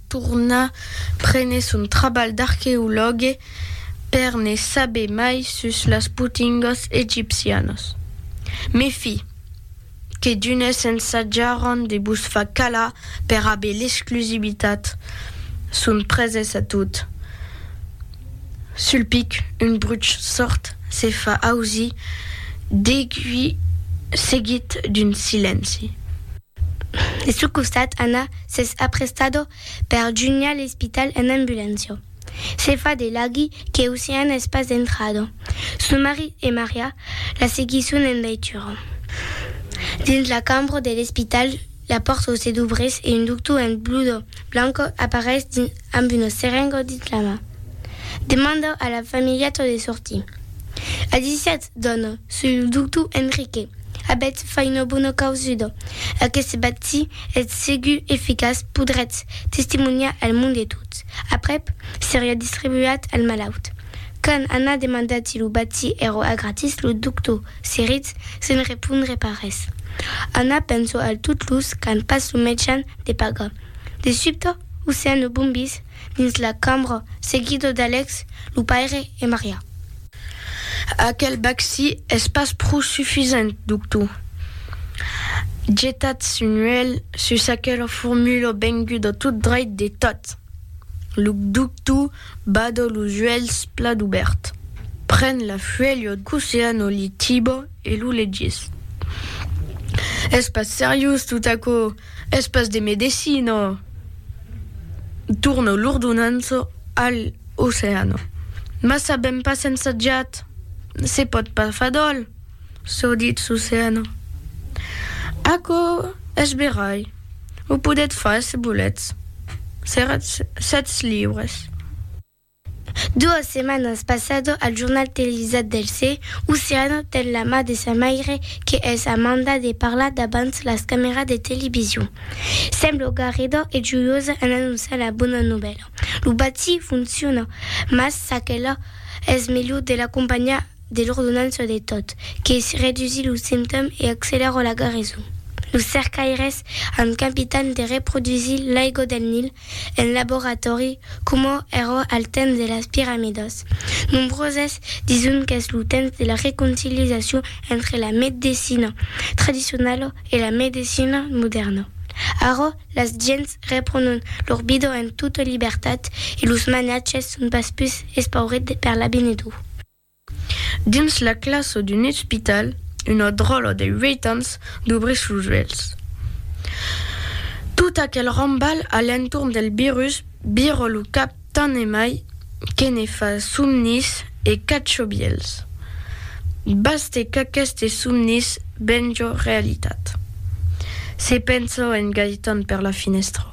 torna prene son trabalh d'arqueològue per ne saber mai sus las potingas egipcianas. Me fi, que d'unes ensajaràn de vos far calar per aver l'exclusivitat, son preses a tot. Sul pic, un bruch sòrd se fa ausir, degui seguit d'un silenci. De su costat Anna s'es aprestado per junhar l'espital en ambulància. Se fa de laghi que Ocean es pas entrado. Su marit e Maria la seguisson en veitura. Dins la cambra de l'espital, la pòrta se dubrís e un doctor en blusa blanca apareis dins amb una serenga dins la man. Demanda a la familheta de sortir. A 17, Dona, soi lo doctor Enrique. Abètz fai una bona causuda. Aqueste vaccí es segur eficaç, podrètz testimoniar al mond e tot aprèp seriá distribuat al malaut. Quand Anna demanda ti lo vaccí èra a gratis, lo doctor se rit sens repondre pas res. Anna pensa al tot los qu'an pas lo mejan de pagar. De subte, aucian lo bombís. dins la cambra, seguido d'Alex, lo paire e Maria. Aquel bacci es pas pro sufisent, doctor. Getatz un uèlh sus aquela formula venguda tot dreit de tot. Lo doctor bada los uèlhs plat obèrt, pren la fuèlha d'Oceano Litiba e lo legís. Es pas seriós tot aquò! Es pas de medecina. Torno l'ordonança al oceano. Mas sabèm pas ensajat. Se pòt pas far d'òl, çò ditz l'oceano. Aquò es verai. O podètz far se volètz. Seretz sètz libres. Duas setmanas passado al jornal televisat del se, Oceano ten la mà de sa maire que es a manda de parlar davant las cameras de television. Semblo garrida e joiosa en anonciar la bona novèla. Lo bati fonciona, mas s'aquela es melhor de l'acompanhar de l'ordonança de tot, que redusí los simptòmes e accelèra la garison. Los cercaires an capitat de reprodusir l'aiga del Nil en laboratòri coma èra al temps de las piramidas. Nombroses dison qu'es lo temps de la reconciliacion entre la medecina tradicionala e la medecina modèrna. Ara, las gents reprònon lor vida en tota libertat e los maniatges son pas pus espaurits per l'avinidor. Dins la classa d'un ospital, una dròla de uèit ans dubrís los uèlhs. Tot aquel rambalh a l'entorn del virus vira lo cap tant e mai que ne fa somnis e cachobièls. Baste qu'aquestes somnis venja realitat. Se pensa en Gaëtan per la finèstra.